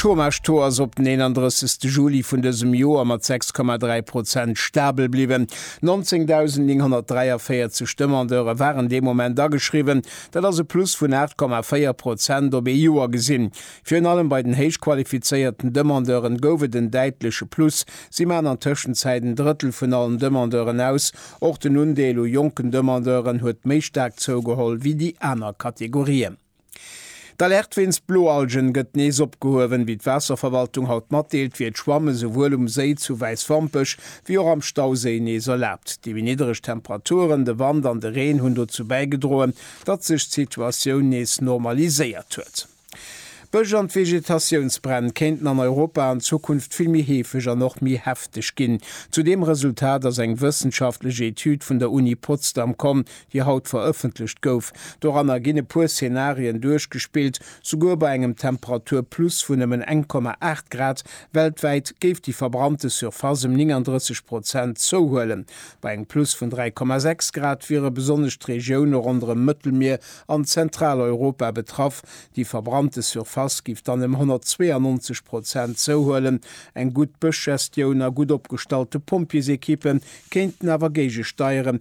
Chômage-Taux ass op den 31 Juli vun dësem Joer mat 6,3 Prozent stabel bliwwen. 19.943 Demandeure waren dee Moment ageschriwwen, dat ass e Plus vun 8,4 Prozent op ee Joer gesinn. Virun allem bei den héich qualifizéierten Demandeuren gouf et en däitleche Plus, si maachen an Tëschenzäit en Drëttel vun allen Demandeuren aus. Och den Undeel u jonken Demandeuren huet méi staark zougeholl wéi déi aner Kategorien. D'Alerte wéinst Bloalgen gëtt nees opgehuewen. Wéi d'Waasserverwaltung haut matdeelt, wier d'Schwamme souwuel um Séi zu Wäiswampech wéi och am Stauséi nees erlaabt. Déi méi niddereg Temperaturen, de Wand an de Reen hunn dozou bäigedroen, datt sech d'Situatioun nees normaliséiert huet. D'Bësch an d'Vegetatiounsbränn kéinten an Europa an Zukunft vill méi heefeg an och méi hefteg ginn. Zu deem Resultat ass eng wëssenschaftlech Etüd vun der Uni Potsdam komm, déi haut verëffentlecht gouf. Doranner ginn e puer Szenarien duerchgespillt. Souguer bei engem Temperaturplus vun nëmmen 1,8 Grad weltwäit géif déi verbrannte Surface ëm 39 Prozent zouhuelen. Bei engem Plus vun 3,6 Grad wiere besonnesch d'Regioune ronderëm Mëttelmier an Zentraleuropa betraff. Déi verbrannte Surface géif dann ëm 192 Prozent zouhuelen. Eng gutt Bëschgestioun a gutt opgestallte Pompjeesekippe kéinten awer géigesteieren,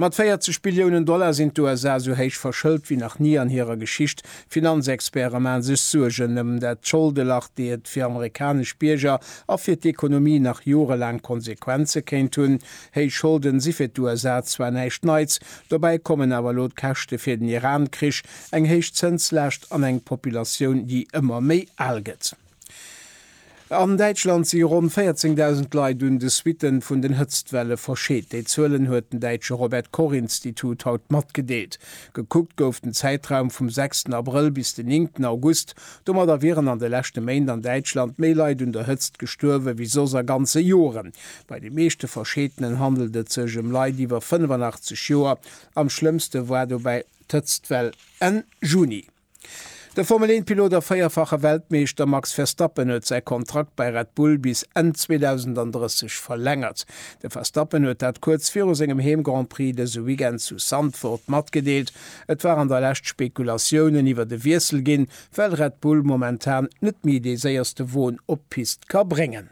Mat 40 Billiounen Dollar sinn d'USA esou héich verschëlt wéi nach ni an hirer Geschicht. D'Finanzexperte mae sech Suergen ëm dat Scholdelach, déi et fir amerikanesch Bierger a fir d'Ekonomie nach jorelaang Konsequenze kéint hunn. Héich Scholden si fir d'USA zwar näischt Neits, dobäi kommen awer elo d'Käschte fir den Iran-Krich, eng héich Zënslaascht an eng Populatioun, déi ëmmer méi al gëtt. An Däitschland si ronn 14.000 Leit un de Suitten vun den Hëtztwelle verscheet. Déi Zuelen huet den däitsche Robert Koch Institut haut matgedeelt. Gekuckt gouf den Zäitraum vum sechsten Abrëll bis den néngten August. Domadder wieren an de leschte Méint an Däitschland méi Leit un der Hëtzt gestuerwe wéi soss a ganze Joren. Bei de meeschte Verscheetenen handelt et sech ëm Leit iwwer 85 Joer. Am schlëmmste war dobäi d'Hëtztwell Enn Juni. De Formel-1-Pilot a véierfache Weltmeeschter Max Verstappen huet säi Kontrakt bei Red Bull bis Enn 2030 verlängert. De Verstappen huet dat kuerz viru sengem Heem-Grand-Prix dëse Weekend zu Zandvoort matgedeelt. Et war an der Lescht Spekulatiounen iwwert e Wiessel ginn, well Red Bull momentan net méi dee séierste Won op d'Pist ka bréngen.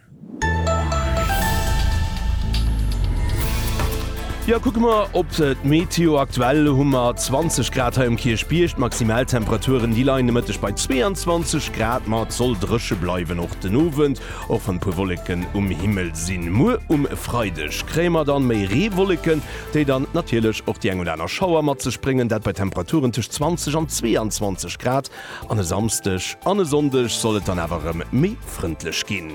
Jo, kucke mer op d'Meteo. Aktuell hu mer 20 Grad hei um Kierchbierg. D'Maximaltemperaturen, déi leien de Mëtteg bei 22 Grad. Ma et soll dréche bleiwen och den Owend, och wann e puer Wolleken um Himmel sinn. Muer um Freideg kréie mer dann méi Reewolleken, déi dann natierlech och déi eng oder aner Schauer mat sech bréngen. Dat bei Temperaturen tëscht 20 an 22 Grad. An e Samsdeg an e Sonndeg soll et dann awer rem méi frëndlech ginn.